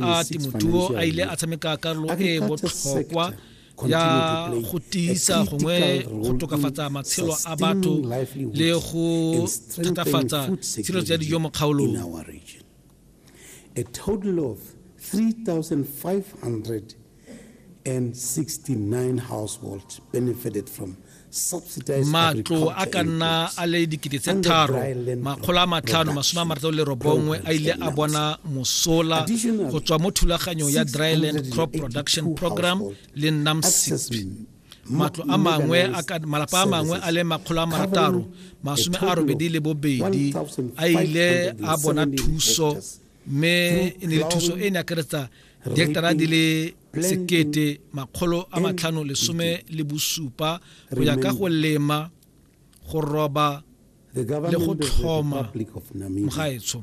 a temothuo a ile a tshameka karolo e botlhokwa ya go tiisa gongwe go tokafatsa matshelo a batho le go thatafatsa tshilo tsa dijo mo kgaolong a total of 3500 and 69 households benefited from matlo a ka nna a le dikete tse tharo makgolo a matlhano masome a marataro le robongwe a ile a bona mosola go tswa mo thulaganyong ya dryland crop production program le namsip matlo a mangwe malapa a mangwe a le makgolo a marataro masome a robedi le bobedi a ile a bona thuso mme e ne le thuso e ne akaretsa dihektara di le sekete makgolo a matlhano lesome le bosupa go ya ka go lema go roba le go tlhoma mogaetsho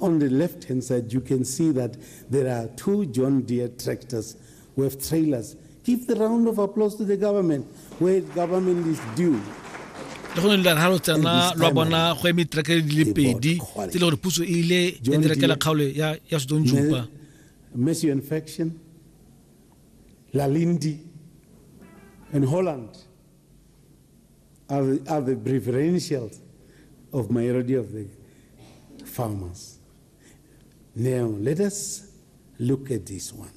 On the left-hand side, you can see that there are two John Deere tractors with trailers. Give the round of applause to the government where the government is due. le gone lelare ga lo tsena lwa bona go eme diterekere di le pedi tse e le gore puso e ile ya direkela kgaolo ya sodong jupa mercy infection lalindi and holland are the, are the preferentials of majority of the farmers. Now, let us look at this one.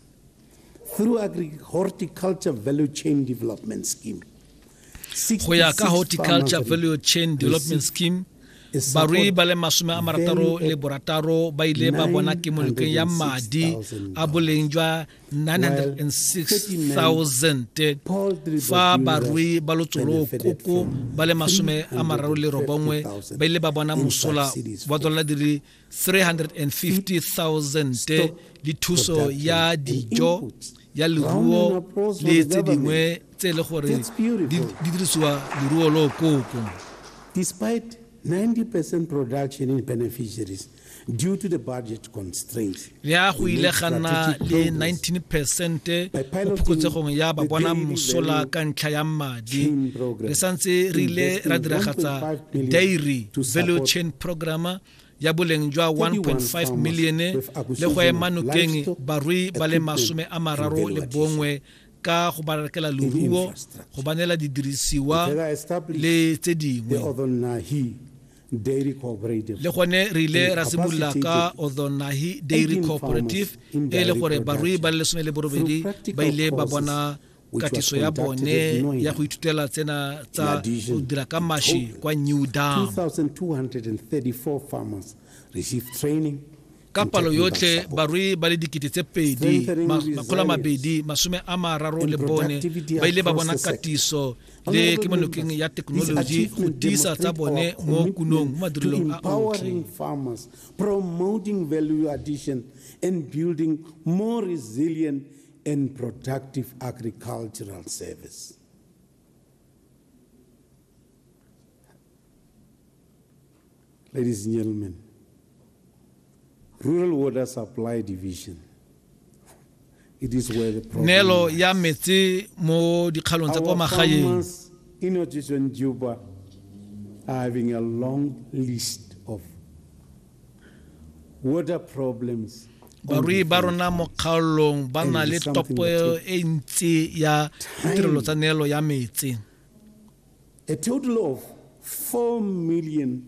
Through agri horticulture value chain development scheme, go ya ka horticulture value chain development scheme barui ba le masome a marataro le borataro ba ile ba bona kemolokeng ya madi a boleng jwa 906,000 fa barui ba lotsolo koko ba le masome a mararo le robongwe ba ile ba bona mosola wa dolara di le 350,000 le thuso ya dijo ya leruo le tse dingwe tse e le gore di dirisiwa leruo lo koko despite 90% production in beneficiaries Due to the budget constraints, le a go ile ga nna le 19 percent mo phokotsegong ya ba bona mosola ka ntlha ya madi re santse re ile ra diragatsa dairy value chain programme ya boleng jwa 1.5 million le go ema nokeng barui ba le masome a mararo le bongwe ka go ba rekela leruo go ba neela didirisiwa le tse dingwe Dairy Cooperative. le gone re ile ra simolola ka odhonahi dairy cooperative e le gore barui ba le lesome le borobedi ba ile ba bona katiso ya bone ya go ithutela tsena tsa go dira ka mashi kwa new dam 2234 farmers received training ka palo yotlhe barui ba le dikete tse pedi makgolo a mabedi masome a mararo le bone ba ile ba bona katiso le kemonokeng ya thekenoloji go tiisa tsa bone mo kunong mo madirelong a otlhe promoting value addition and building more resilient and productive agricultural service Ladies and gentlemen, Rural Water Supply Division it is where the problem Nelo ya metsi mo dikgalong tsa kwa magaeng. In Ocean Juba are having a long list of water problems barui ba rona mo kgaolong ba na le topo e ntsi ya ditirelo tsa neelo ya metsi A total of 4 million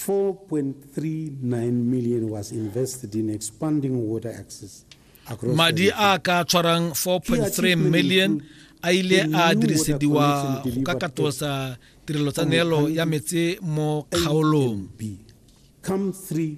4.39 million was invested in expanding water access across madi a ka tshwarang 4.3 million a ile a dirisediwa go ka katosa tirelo tsa neelo ya metse mo kgaolong come three